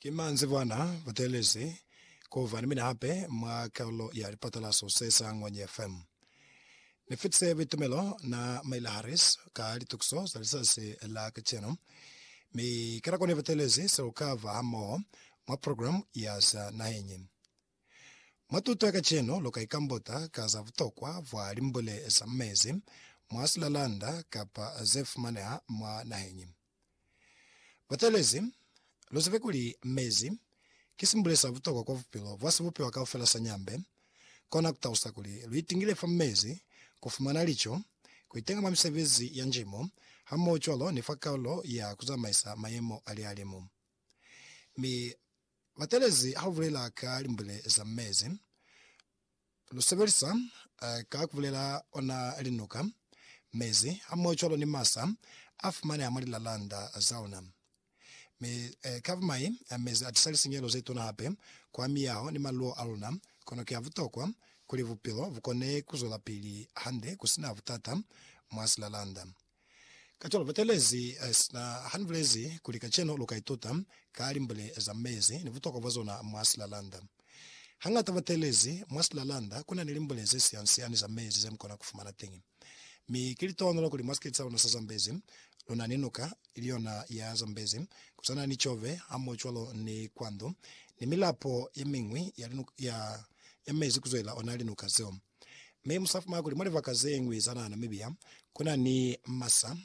Ki manzibwana butelezi kuba ni mina hape mwa karolo ya lipatalaso se sa Ngwanye FM. Ni fitise buitumelo na Maila Harris ka litukiso za lizazi la kacenu, mi ka nako ni butelezi se lu ka ba hamoho mwa programu ya za naheñi. Mwa tuto ya kacenu lu ka ikambota ka za butokwa bwa limbule za mezi mwa silalanda kapa ze fumaneha mwa naheñi. Batelezi, luzibe kuli mezi ki simbule sa butokwa kwa bupilo bwa sibupiwa kaufela sa nyambe, kona kutalusa kuli luitingile fa mezi, kufumana lico, kuitenga mwa misebezi ya njimo, hamohocwalo ni fa kalulo ya kuzamaisa mayemo a lihalimu. Mi, Batelezi haubulela ka limbule za mezi, Lu sebelisa ka ku bulela ona linuka, mezi, hamohocwalo ni masa a fumaneha mwa lilalanda za ona. Mi ka bumai, mezi a tisa lisinyehelo ze tuna hape kwa miyaho ni maluo a luna. Kono ki a butokwa kuli bupilo bu kone ku zwelapili hande ku si na butata mwa silalanda. Kacwalo batelezi sina hanibulezi kuli kacenu luka ituta ka limbule za mezi ni butokwa bwa zona mwa silalanda. Hangata batelezi mwa silalanda kuna ni limbule ze siansiani za mezi zemukona kufumana teñi. Mi ki litohonolo kuli mwa sikiti saluna sa Zambezi luna ni nuka iliyona ya Zambezi, kusana ni Chove hamohocwalo ni Kwandu ni milapo yemiñwi ya mezi kuzwelela ona linuka zeo. Mi musafumana kuli mwa libaka zeñwi za naha Namibia kuna ni masa,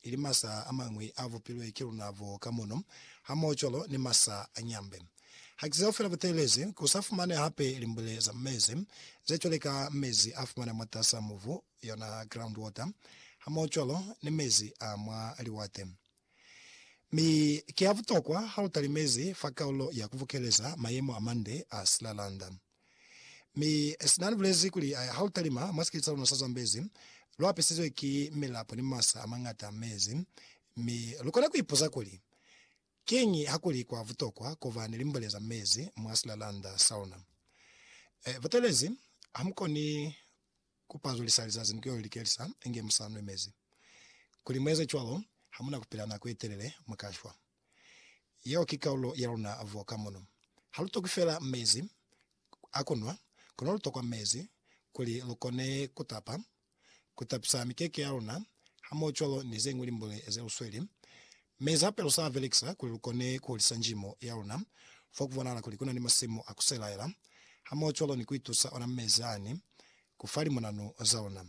ili masa amañwi a bupilwe ki luna bo ka mono, hamohocwalo ni masa a nyambe. Haki zeo fela butelezi, ku sa fumane hape limbule za mezi, ze cwale ka mezi a fumana mwatas'a mubu, yona groundwater, hamohocwalo ni mezi a mwa liwate. Mi ki ya butokwa ha lu talimezi fa kaulo ya ku bukeleza mayemo a mande a silalanda. Mi Sinan bulezi kuli, Ha lu talima mwa sikete sa luna sa Zambezi, lu apisizwe ki milapo ni masa a mañata a mezi, mi lu kona ku ipuza kuli, Kiñi ha ku li kwa butokwa ku ba ni limbole za mezi mwa silalanda sa luna? Butelezi, Ha mu koni Ku pazulisa lizazi ni ku yo likelisa inge mu sa nwe mezi. Kuli mu eze cwalo, ha mu na ku pila nako ye telele, mu ka shwa. Yeo ki kaulo ya luna vo ka mono. Ha lu tokwi fela mezi a ku nwa, kono lu tokwa mezi kuli lu kone ku tapa, ku tapisa mikeke ya luna, hamoho cwalo ni ze ñwi limbule ze lu sweli Mi Zapel sa velekisa kuli lukone kuhulisa njimo yaluna. Fo kubonahala kuli kuna ni masimu a kuselaela, hamohocwalo ni kuitusa ona mezi ani ku fa limunanu zaluna.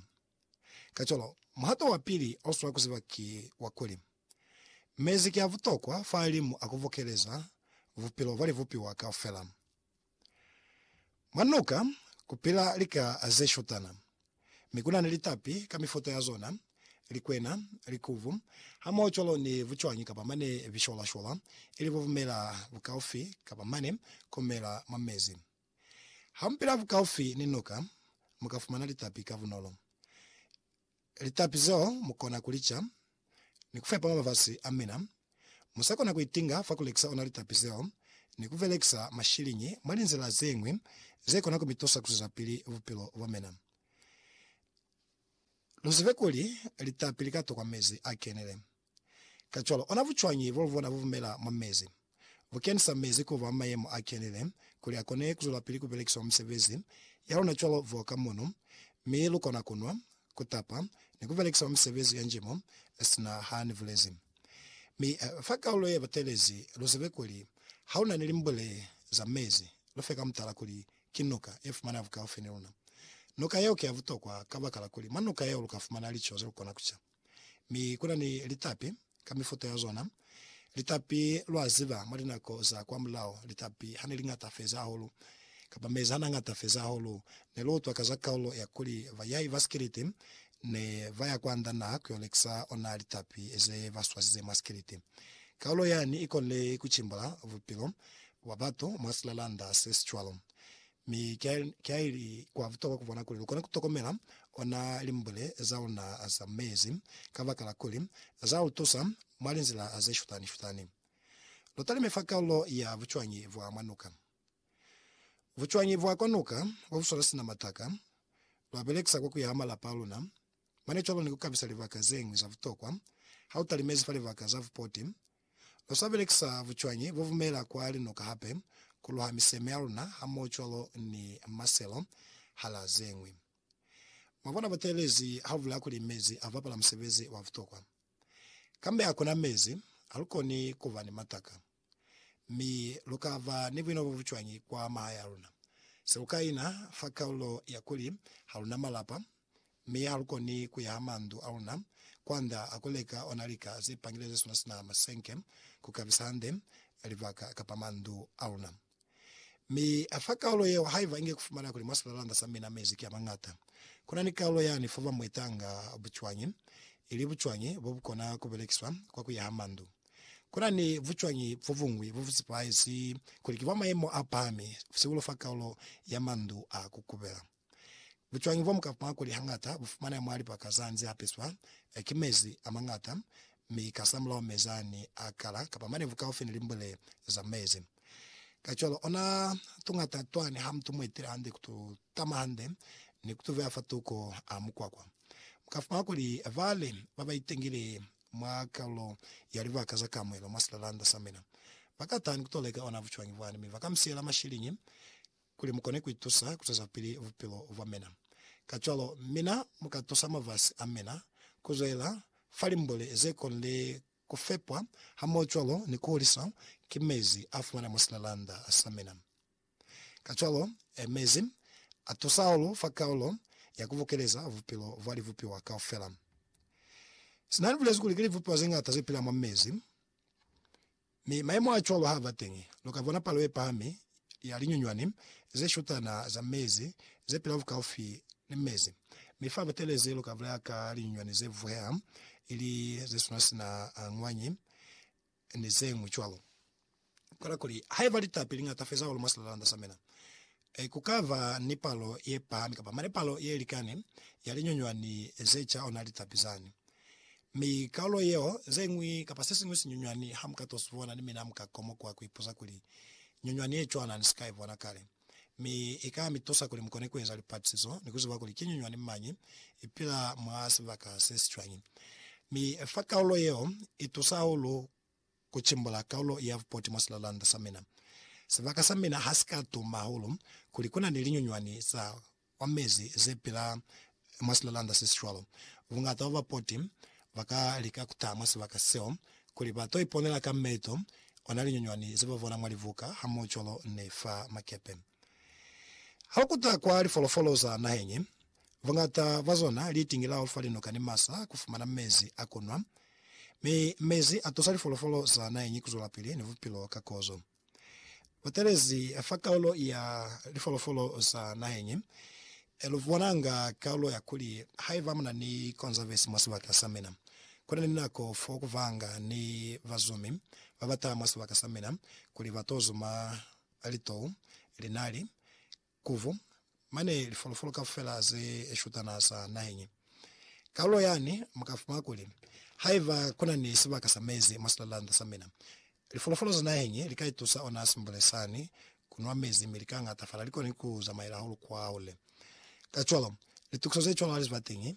Kacwalo, muhato wapili oswa kuziba ki wa kuli, mezi ki abutokwa fa limu a kuvokeleza bupilo bwa libupiwa kaufela. Mwa noka ku pila lika ze shutana, mi ku na ni litapi ka mifuta ya zona, likwena, likubu, hamoho cwalo ni bucwañi kapa mane bishwalashwala, ili bubumela bukaufi kapa mane ku mela mwa mezi. Ha mu pila bukaufi ni noka, mu ka fumana litapi ka bunolo. Litapi zeo mukona kulica ni kufepa mwa mafasi amina. Musakona kuitinga fa kulekisa ona litapi zeo ni kubelekisa mashiliñi mwa linzila zeñwi zekona kumitusa kuswezapili bupilo bwamina. Luzibe kuli litapi likatokwa mezi akenile. Kacwalo, ona bucwañi bolubona bubumela mwa mezi? Bukenisa mezi kuba mwa mayemo a kenile kuli akone kuzwelapili kubelekiswa mwa misebezi yalona cwalo voka mono, mi lukona kunwa, kutapa, ni kubelekisa mwa misebezi ya njimo, sina hani bulezi. Mi fa kaulo yebatelezi, luzebe kuli haluna ni limbule za mezi, lufe ka mutala kuli ki nuka yefumana bukaufi ni luna. Nuka yeo ki ya butokwa kabakala kuli mwa nuka yeo lukafumana lico zelukona kuca. Mi kuna ni litapi ka mifuta ya zona. Litapi, lwa ziba, mwa linako za kwa mulao, litapi hane liñata feza hahulu, kapa mezi hana ñata feza hahulu, ne lu utwa ka za kaulo ya kuli bayai ba sikiliti ne ba ya kwa nda naha ku yo lekisa ona litapi ze ba swazize mwa sikiliti. Kaulo yani i konile ku cimbula bupilo bwa batu mwa silalanda se si cwalo. Mi kiaili kwa butokwa kubona kuli lukone kutokomela ona limbule zauna za mezi, kabakala kuli zautusa mwa linzila zeshutani-shutani. Lutalime fa kaulo ya bucwañi bwa mwa nuka. Bucwañi bwa kwa nuka bobuswala sina mataka, lwabelekisa kwa kuyaha malapa aluna. Mane cwalo ni kukabisa libaka zeñwi za butokwa, hautalimezi fa libaka za bupoti, Lu sa belekisa bucwañi bo bumela kwa linuka hape ku luha miseme ya luna hamohocwalo ni maselo hala ze ñwi. Mwa bona butelezi ha bu bulaya kuli mezi a bapala musebezi wa butokwa. Kambe ha ku na mezi, ha lu koni ku ba ni mataka. Mi lu ka ba ni buino bo bucwañi kwa mahaya a luna? Se lu ka ina fa kalulo ya kuli ha lu na malapa, Mi ha lu koni ku ya ha mandu a luna kwanda a ku leka ona lika ze pangileze sona sina masenke ku kabisa hande libaka kapa mandu a luna. Mi a fa kaulo yeo haiba inge ku fumana kuli mwa silalanda sa mina mezi ki a mañata. Ku na ni kaulo yani fo ba mu itanga bucwañi, ili bucwañi bo bu kona ku belekiswa kwa ku ya ha mandu. Ku na ni bucwañi bo buñwi bo bu sepahezi kuli ki bwa mayemo a pahami, sihulu fa kaulo ya mandu a ku kubela. Bucwañi bwa mu ka panga kuli hañata bu fumaneha mwa libaka za nze a peswa ki mezi a mañata, mi kasamulaho mezi a ni a kala, kapa manevu kaufi ni limbwele za mezi. Kacwalo, ona tuñata twa ne ha mutu mu etile hande ku tu tama hande ni ku tu beya fa tuko a mukwakwa. Mu ka fumana kuli ba li ba ba itengile mwa kalulo ya libaka za kamuelo mwa silalanda sa mina ba ka taha ni ku to leka ona bucwañi bwani, mi ba ka mu siyela mashiliñi kuli mu kone ku itusa ku zwezapili bupilo bwa mina. Kacwalo, mina mu ka tusa mafasi a mina ku zwela fa limbuli ze konile ku fepwa hamohocwalo ni ku huliswa ki mezi a fumana mwa silalanda sa mina. Kacwalo, mezi a tusa hahulu fa kaulo ya ku bukeleza bupilo bwa libupiwa kaufela. Sina ni bulezi kuli ki libupiwa ze ñata ze pila mwa mezi. Mi mayemo a cwalo ha ba teñi, lu ka bona palo ye pahami ya linyunywani ze shutana za mezi ze pila bukaufi ni mezi. Mi fa Butelezi lu ka bulaya ka linyunywani ze vuheha, ili ze suna sina a ñwanyi, ni ze ñwi cwalo. Kola kuli, haiba litapi li ñata feza hahulu mwa silalalanda sa mina, Ee, ku ka ba ni palo ye pahami kapa mane palo ye likani ya linyunywani ze ca ona litapi zani. Mi kaulo yeo, ze ñwi kapa se siñwi sinyunywani ha mu ka to si bona, ni mina mu ka komokuha ku ipuza kuli, Nyunywani ye cwana ni si ka i bona kale. Mi i ka mi tusa kuli mu kone ku eza lipatisizo ni ku ziba kuli ki nyunywani mañi i pila mwa sibaka se si cwañi. Mi fa kaulo yeo i tusa hahulu Ku cimbula kaulo ya vupoti mwa silalanda sa mina. Sibaka sa mina ha si ka tuma hahulu kuli ku na ni linyunywani za kwa mezi ze pila mwa silalanda se si cwalo. Bungata bwa bapoti ba ka lika ku taha mwa sibaka seo kuli ba to iponela ka meeto ona linyunywani ze ba bona mwa libuka hamoho cwalo ni fa makepe. Ha lu kuta kwa lifolofolo za naheng, Buñata bwa zona li itingilaho fa linoka ni masa ku fumana mezi a ku nwa, mi mezi a tusa lifolofolo za naheñi ku zwelapili ni bupilo ka kozo. Butelezi fa kaulo ya lifolofolo za naheñi lu bonanga kaulo ya kuli, Haiba mu na ni konzavesi mwa sibaka sa mina, ku na ni nako fo ku banga ni bazumi ba ba taha mwa sibaka sa mina kuli ba to zuma litou, linali, Kuvu, mane lifolofolo kaufela ze shutana za naheñi. Kalulo yani mu ka fumana kuli, Haiba ku na ni sibaka sa mezi mwa silalanda sa mina, lifolofolo za naheñi li ka itusa ona simbule sani ku nwa mezi mi li ka ñatafala, li koni ku zamaela hahulu kwahule. Kacwalo, litukiso ze cwalo ha li si ba teñi.